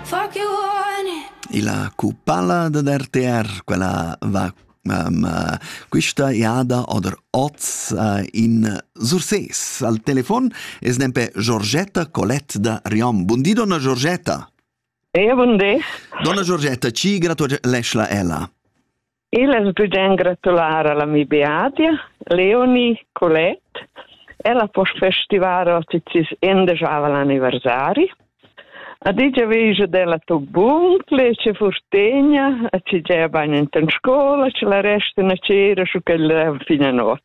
Fuck you, honey. Ila cupalla da RTR, quella va um, uh, questa iada oder oz uh, in Surses. Al telefon es nempe Giorgetta Colette da Riom. Bundi, donna Giorgetta. E, bundi. Donna Giorgetta, ci gratulesch la ella. Il es bgern gratular alla mi Beatia, Leonie Colette, ella po festivar oticis endejaval anniversari. A digia veja della to bun, ple ce furtegna, a ci gea bain in ten scola, ce la resta na cera su quella fina not.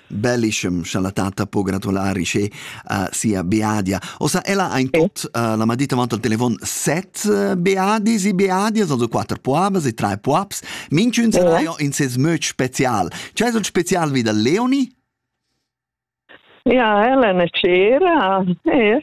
Bellischem cha la tatta po gratular isce a sia Beadia. Ossa ella ha in tot uh, la madita avanti al telefon set uh, Beadis e Beadias, also quatter puabas e tre puabs. Minchun seraio in ses möd special. C'è un special vi da Leoni? Ja, Elena Cera, ja.